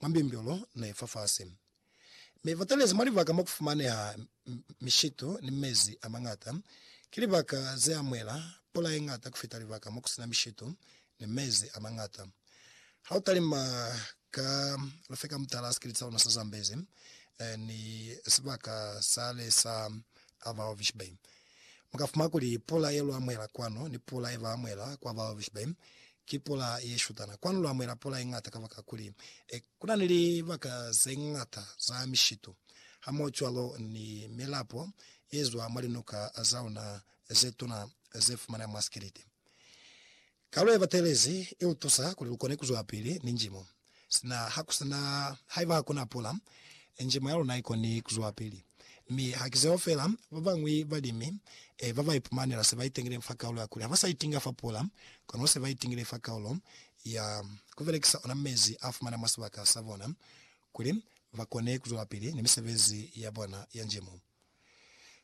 mwa mbyumbyulu ne i fafasi. Mi ba talezi mwa libaka mo ku fumaneha mishitu ni mezi a mañata. Ki libaka ze amuhela pula ye ñata ku fita libaka mo ku si na mishitu ni mezi a mañata. Ha u talima ka lufeka mutala sikiliti sa luna sa Zambezi ni sibaka sale sa Ava Hovis Bay, Mu ka fumana kuli pula ye lu amuhela kwanu ni pula ye ba amuhela kwa bababeshi ba inwi ki pula ye shutana. Kwanu lu amuhela pula ye ñata kabakakuli ku na ni libaka ze ñata za mishitu hamohocwalo ni milapo ye zwa mwa linuka za luna ze tuna ze fumaneha mwa sikiliti. Kalu yabatelezi ilutusa kuli lukone kuzwapili ni njimo sina hakusina haiba hakuna pula. Njimo yaluna ikoni kuzwapili, mi hakizeo feela. Babañwi balimi babaipumanela sebaitengileñi fa kaulo yakuli habasaitinga fa pula, kono sebaitingile fa kaulo ya kubelekisa ona mezi afumana mwa sibaka sabona kuli bakone kuzwelapili ni misebezi yabona ya njimo.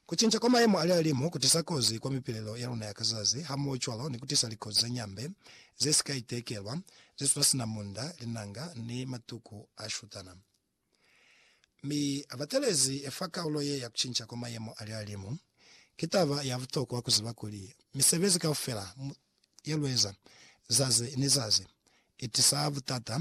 Kucinca kwa mayemo a lihalimu kutisa kozi kwa mipilelo ya luna ya ka zazi, hamohocwalo ni kutisa likozi za nyambe ze si ka itekelwa, ze sula sina munda, linanga, ni matuku a shutana. Mi batelezi fa kaulo ye ya kucinca kwa mayemo a lihalimu, ki taba ya butokwa kuziba kuli misebezi kaufela ye lueza zazi ni zazi itisa butata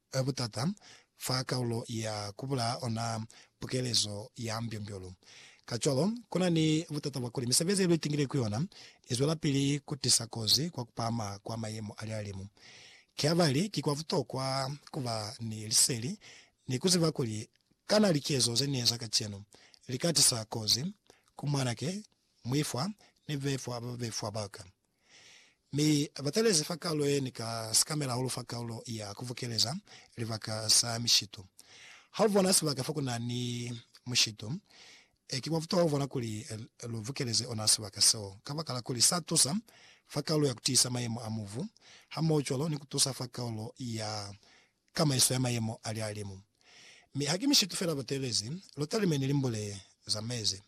Ka butata, fa kaulo ya ku bulaa ona pukelezo ya mbyombyo-lu. Kacwalo, ku na ni butata bwa kuli misebezi ye lu itingile ku yona i zwelapili ku tisa kozi kwa ku pahama kwa mayemo a lihalimu. Ki habali ki kwa butokwa ku ba ni liseli ni ku ziba kuli kana likezo ze ni eza kacenu li ka tisa kozi ku mwanake, muifwa, ni bebefwa ba babefwa ba ka. mi abatalezi fa kalulo yeni ka sikamela hahulu fa kalulo ya kuvukeleza libaka sa mishitu. Ha ubona sibaka fa kuna ni mushitu, ki kwa butokwa kubona kuli lu vukeleze ona sibaka seo, kabakala kuli sa tusa fa kalulo ya kutiisa mayemo a mubu, hamoho cwalo ni kutusa fa kalulo ya tamaiso ya mayemo a lihalimu. Mi haki mishitu fela batelezi lotalime ni limbule za mezi.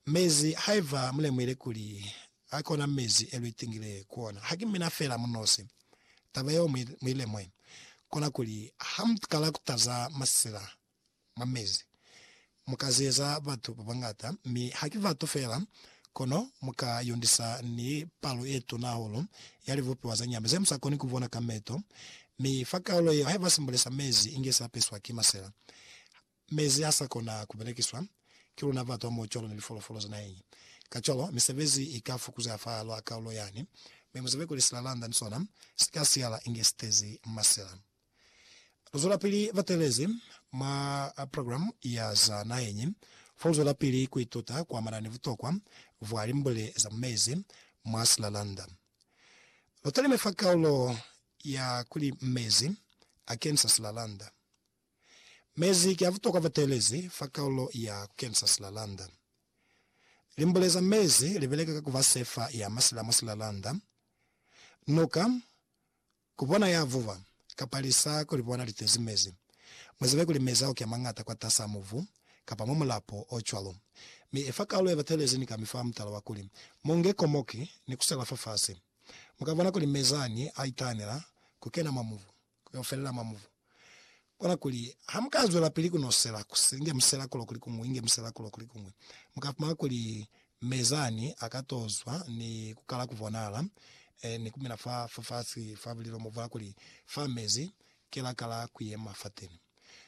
Mezi, haiba mulemuhile kuli a kona mezi e luitingile ku ona, haki mina fela munosi. Taba yeo muilemue, kona kuli ha mukala kutaza masila mwa mezi. Mu ka zeza batu ba bañata, mi haki batu fela, kono mu ka yondisa ni palo ye tuna hahulu ya libupiwa za nyama ze mu sa koni ku bona ka meto. Mi fa kaulo yeo, haiba simbole sa mezi inge sa peswa ki masela, mezi ha sa kona ku belekiswa ki luna batu hamoho cwalo ni lifolofolo za naheñi. Kacwalo, misebezi i ka fukuzeha fa halwa kaulo yani, mi mu zibe kuli silalanda ni sona si ka siyala inge si tezi masela. Bazwelapili ba teelezi mwa programe ya za naheñi fa ku zwelapili ku ituta ku amana ni butokwa bwa limbule za mu mezi mwa silalanda. Ba talime fa kaulo ya kuli Mezi a Kenisa Silalanda. Mezi ki a butokwa fa teelezi fa kaulo ya ku kenisa silalanda. Limbule za mezi li beleka ka ku ba sefa ya masila mwa silalanda. Nuka, Ku bona ya vuba, kapa lisa ku li bona li tezi mezi. Mu zibe kuli mezi a oki a mañata kwatas'a mubu, kapa mwa mulapo o cwalo. Mi i fa kalulo ye batelezi ni kami fa mutala wa kuli, Mu nge komoki, ni ku sela fafasi. Mu ka bona kuli mezi ani a itahanela ku kena mwa mubu, ku yo felela mwa mubu. Kona kuli ha mu ka zwelapili ku nosela, ku si inge musela kulo kuli kuñwi, inge musela kulo kuli kuñwi, mu ka fumana kuli Mezani a ka to zwa ni ku kala ku bonala, eh, ni ku mina fa, fa fasi fa bulilo mo bwa kuli fa mezi, ki la kala ku yema fateni.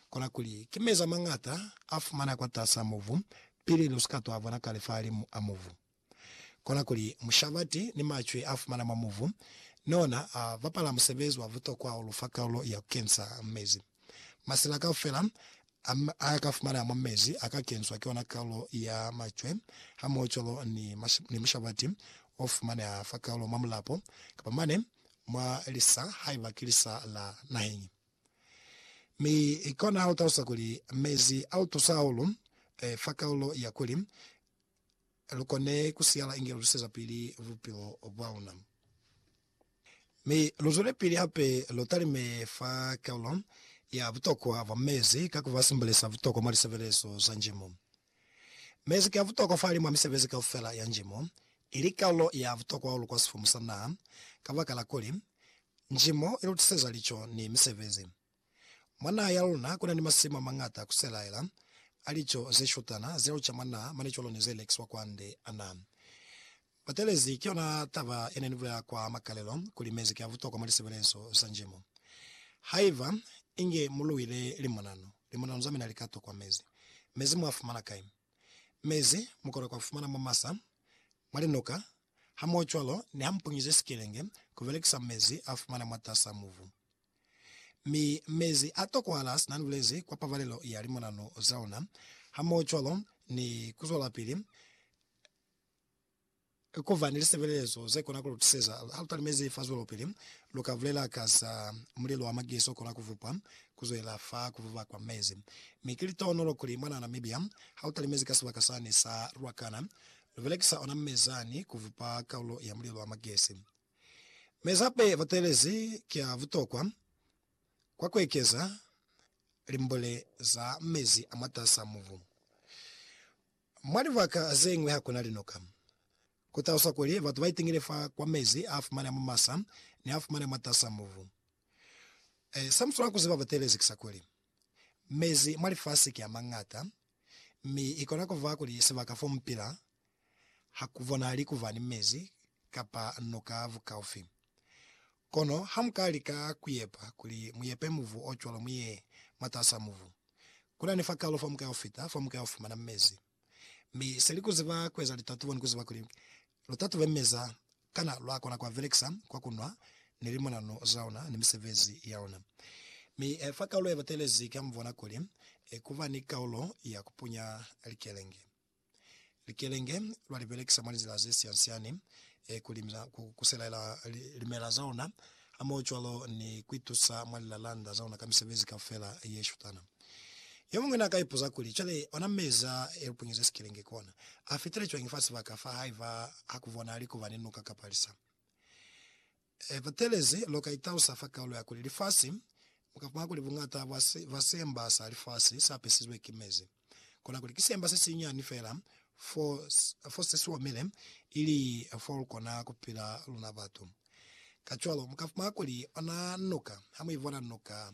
Kona kuli ki mezi a mañata a fumaneha kwatas'a mubu, pili lu si ka to a bona kale fahalimu a mubu. Kona kuli mushabati ni macwi a fumana mwa muvu ni ona a bapala musebezi wa butokwa o lu fa kalulo ya ku kensa mezi. Masila kaufela a a ka fumanaa mwa mezi a ka kenswa ki ona kalulo ya macwe hamohocwalo ni ni mushabati o fumaneha fa kalulo mwa mulapo kapa mane mwa lisa haiba ki lisa la naheñi. Mi kona ha lu talusa kuli mezi a lu tusa hahulu fa kalulo ya kuli lu kone ku siyala inge lu tusezapili bupilo bwa luna. Mi lu zwelepili hape lu talime fa kaulo ya butokwa bwa mezi ka ku ba simbulisa butokwa mwa lisebelezo za njimo. Mezi ki a butokwa fahali mwa misebezi kaufela ya njimo, ili kaulo ya butokwa hahulu kwa sifumu sa naha, kabakala kuli, njimo i lu tuseza lico ni misebezi. Mwa naha ya luna kuna ni masimu amañata kuselaela a lico zeshutana zeluca mwa naha mane cwalo ni ze lekiswa kwande. Ana batelezi ki yona taba yene ni bulela kwa makalelo kuli mezi ki a butokwa mwa lisebelezo za njimo. Haiba inge mu luile limonano, limonano za mina li ka tokwa mezi. Mezi mu a fumana kai? Mezi mu kona ku a fumana mwa masa, mwa linuka, hamohocwalo ni ha mu punyize sikelenge ku belekisa mezi a fumana mwatas'a mubu. Mi mezi a tokohala sina nibulezi kwa pabalelo ya limonano za ona, hamohocwalo ni kuzwelapili kuba ni lisebelezo zekona kulutuseza halutalimezi fa zwelopili. Luka bulela ka za mulilo wa magesi okona kuvupwa kuzwela fa kuvuba kwa mezi. Mi ki litohonolo kuli mwana Namibia halutalimezi ka sibaka sani sa Ruacana lubelekisa ona mezani kuvupa kaulo ya mulilo wa magesi. Mezape batelezi ki a butokwa kwa kuekeza limbule za mezi a mwatasaa mubu. Mwa libaka zeñwi hakuna linoka. Kutaluswa kuli batu baitingile fa kwa mezi a fumaneha mwa masa ni a fumaneha mwatasaa mubu. Se muswanela kuziba batelezi ki sa kuli, mezi mwa lifasi ki a mañata, mi ikona kuba kuli sibaka fo mupila Ha ku bonahali ku ba ni mezi kapa noka bukaufi. Kono hamuka lika ku yepa kuli mu yepe mubu o cwalo mu ye mwatas'a mubu. Ku na ni fakalo fa muka ufita fa muka ufumana mezi. Mi seli ku ziba kueza litatubo ni ku ziba kuli lu tatube mezi a, kana lwa kona ku a belekisa kwa ku nwa ni limonanu za ona ni misebezi ya ona. Mi fa kaulo ye batelezi, ki a mu bona kuli ku ba ni kaulo ya ku punya likelenge. Likelenge lwa li belekisa mwa lizila ze sian-siani ku limisa, ku kuselaela limela za ona, hamohocwalo ni ku itusa mwa lilalanda za ona ka misebezi kaufela ye shutana. Yomuñwi na ka ipuza kuli, Cwale, ona meza e lu punyeze sikelenge kona, a fitile cwañi fa sibaka fa haiba ha ku bonahali kuba ni nuka kapa lisa? He batelezi, lu ka italusa fa kaulo ya kuli lifasi. Mu ka fumana kuli buñata bwa se ba semba sa lifasi sa pisizwe ki mezi. Kona kuli ki semba se sinyani fela fo, fo se si omile, ili fo lu kona ku pila luna batu. Kacwalo, mu ka fumana kuli ona nuka, ha mu ibona nuka,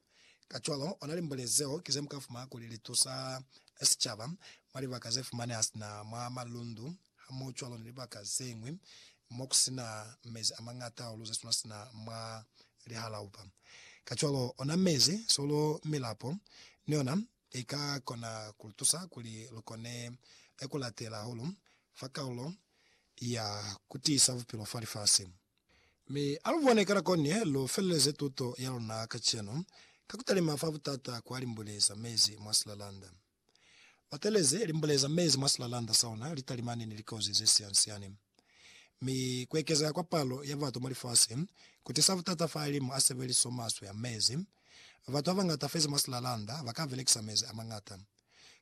Kacwalo, ona limbole zeo ki zemuka fumana kuli litusa sicaba mwa libaka zefumaneha sina mwa malundu hamohocwalo ni libaka zeñwi mokusina mezi amañata hahulu zesuna sina mwa lihalaupa. Kacwalo, ona mezi, solo, milapo ni yona ika kona kulutusa kuli lukone kulatela hahulu fa kalulo ya kutiisa bupilo fa lifasi. Mi alubone ka nako ni lu feleleze tuto ya luna kacenu ka kutalima fa butata kwa limbule za mezi mwa silalanda. Batelezi limbule za mezi mwa silalanda sa ona litalimani ni likozi ze sian-siani. Mi kuekezeha kwa palo ya batu mwa lifasi kutisa butata fa alimu a sebeliso maswe a mezi Batu babañata feza mwa silalanda baka belekisa mezi amañata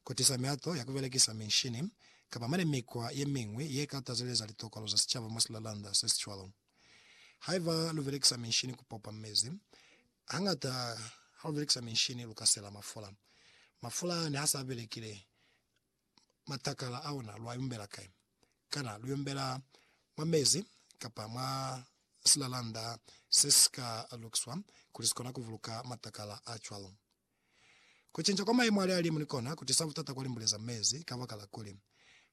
ku tisa mihato ya ku belekisa minshini kapa mane mikwa yemiñwi ye ka tazeleza litokolo za sicaba mwa silalanda sesicwalo. Haiba lu belekisa minshini ku popa mezi, hañata ha lu belekisa minshini lu ka sela mafula. Mafula ne ha sa belekile, matakala a ona, lwa yumbela kai? Kana lu yumbela mwa mezi kapa mwa silalanda se si ka lukiswa kuli si kona ku buluka matakala a cwalo? Ku cinca kwa mayemo a lihalimu ni kona ku tisa butata kwa limbule za mezi, kabakala kuli,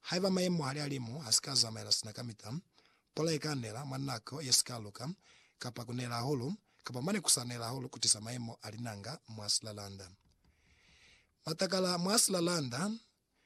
haiba mayemo a lihalimu ha si ka zamaela sina kamita, pula i ka nela mwa nako ye si ka luka, kapa ku nela hahulu, kapa mane ku sa nela hahulu ku tisa mayemo a linanga mwa silalanda. Matakala mwa silalanda